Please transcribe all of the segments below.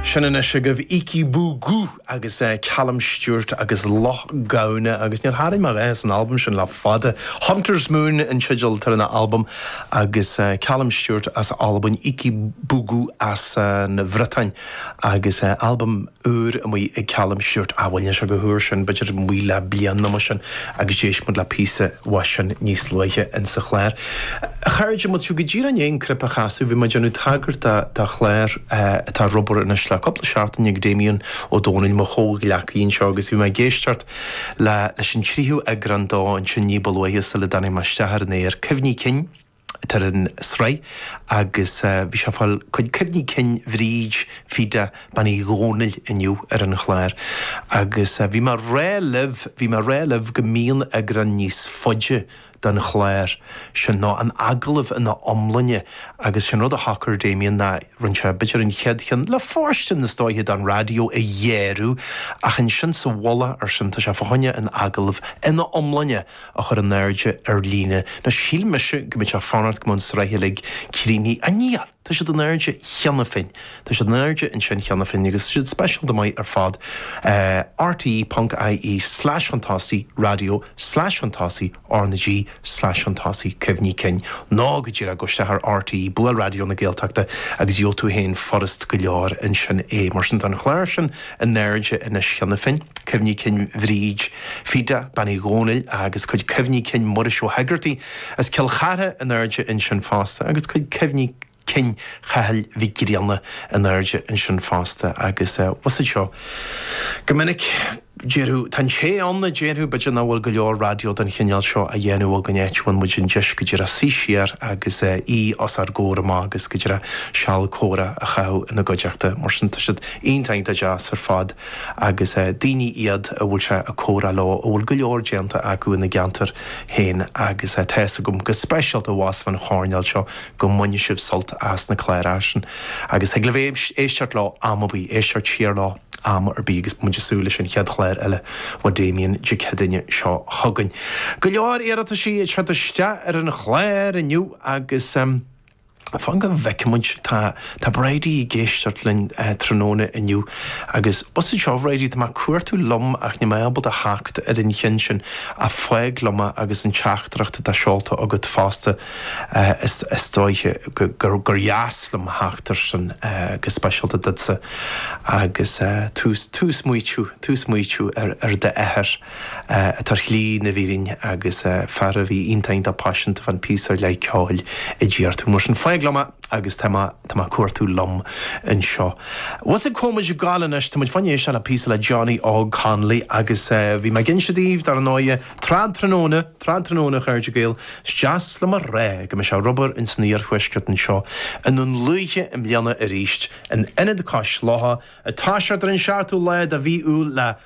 Sin anois agaibh Heikki Bourgault agus Calum Stewart agus Loch Gamhna agus níor tharraing mé a dhath as an albam sin le fada. Hunter's Moon an teideal atá ar an albam agus Calum Stewart as Albain, Heikki Bourgault as an Bhriotáin agus albam úr amuigh ag Calum Stewart ah bhuel níl sé chomh húr sin b'fhéidir amuigh le bliain nó mar sin agus d'éist muid le píosa uaidh sin níos luaithe insa chlár. A chairde muid go díreach i ndiaidh an clip a chasadh bhí mé ag déanamh tagairt do do chlár atá ar obair anois le cúpla seachtain ag Damien Ó Dónaill mo chomhghleacaí anseo agus bhí mé ag éisteacht le leis an tríú eagrán dó ansin ní ba luaithe sula dtáinig mé isteach ar an aer. Cuimhní cinn. atá ar an tsraith agus bhí sé ag fáil cuid cuimhní cinn Bhríd Phíde Bean Uí Dhomhnaill inniu ar an chlár agus bhí mé rá libh, bhí mé rá libh go mbíonn eagrán níos faide den chlár sin nó an agallamh ina iomláine agus sin rud a shocair Damien ná rinn sé b'fhéidir an chéad cheann le fóirstean is dóiche don raidió a ghearradh ach ansin sa mhullach air sin tá sé fá choinne an agallamh ina iomláine a chur in airde ar líne. Anois, shíl mise go mbeadh muid ag fanacht go mbeadh an sraith uilig críochnaithe. Ach níl! Tá siad in airde cheana féin. Tá siad in airde ansin cheana féin agus tá siad speisialta maith ar fad. rte.ie slash chun tosaigh raidió slash chun tosaigh R na G slash chun tosaigh cuimhní cinn. Nó go díreach gabh isteach ar rte, buail Raidió na Gaeltachta agus gheobh tú féin furast go leor ansin é. Mar sin, tá an clár sin In airde anois cheana féin, cuimhní cinn Bhríd Phete Bean Uí Dhomhnaill agus cuid cuimhní cinn Mhuiris Ó hÉigeartaigh as Cill Chartha in airde ansin fosta agus cuid cuimhní cinn Chathail Mhic Grianna in airde ansin fosta agus tá fhios agat seo go minic déarfadh, tá an té ann a déarfadh, b'fhéidir nach bhfuil go leor raidió den chineál seo á dhéanamh againn áit a bhfaigheann muid an deis go díreach suí siar agus aoi os ár gcomhair amach agus go díreach seal comhrá a chaitheamh ina gcuideachta mar sin tá siad Iontach deas ar fad agus daoine iad a bhfuil sé ag comhrá leo, a bhfuil go leor déanta acu ina gceantair féin agus tá fhios agam, go speisialta abhus fán choirnéal seo, go mbaineann sibh sult as na cláracha sin agus thig libh éisteacht leo am ar bith, éisteacht siar leo am ar bith agus muid ag súil leis an chéad chlár eile ó Damien Dé Céadaoine seo chugainn. Go leor iarrataisí ag teacht isteach ar an chlár inniu agus. Fan go bhfeicimid. Tá Bridie ag éisteacht linn tráthnóna inniu. Agus anseo, a Bhridie, tá mé ag cuartú liom ach níl mé ábalta theacht ar an cheann sin ach fág liom é agus an teachtaireacht atá seolta agat fosta. Is dóiche gur dheas liom theacht ar sin go speisialta duitse agus tú ag smaoitiú ar d'athair. atá ar shlí na fírinne agus fear a bhí iontach iontach paiseanta fán phíosa ar leith ceoil a d'iarr tú mar sin fág liom é agus tá mé tá mé ag cuartú liom anseo abhus ag coimhéad go leor anois tá muid fá choinne éisteacht le píosa le Johnny Óg Connolly agus bhí mé ag inse daoibh dar ndóigh Trad Tráthnóna Trad Tráthnóna a chairde Gael is deas liom a rá go mbeidh sé ar obair ins an iarthuaisceart anseo i nDún Lúiche i mbliana arís in Ionad Cois Locha atá siad ar an cheathrú lá de mhí Iúil le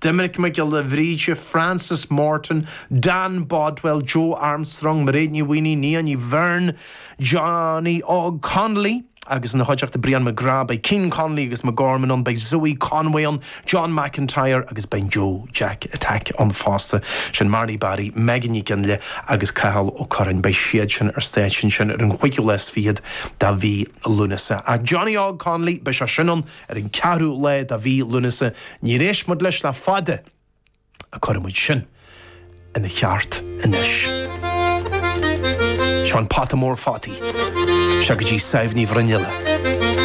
Doimnic Mac Giolla Bhríde, Frances Morton, Dan Bodwell, Joe Armstrong, Mairéad Ní Mhaonaigh, Nia Ní Bheirn, Johnny Óg Connolly agus ina chuideachta Brian McGrath. Beidh Ciarán Connolly agus McGorman ann, beidh Zoe Conway ann, John McIntyre agus beidh SíFiddlers ann fosta. Sin Marnie Barry, Megan Ní Ghinlé agus Cathal Ó Curráin. Beidh siad sin ar stáitse ansin ar an chuigiú lá is fichead de mhí Lúnasa. Ach Johnny Óg Connolly, beidh sé sin ann! Ar an ceathrú lá de mhí Lúnasa, níor éist muid leis le fada, ach cuirfidh muid sin ina cheart anois. Seo An Pota Mór Fataí. Isteach go dtí Sadhbh Ní Bhruinnealla.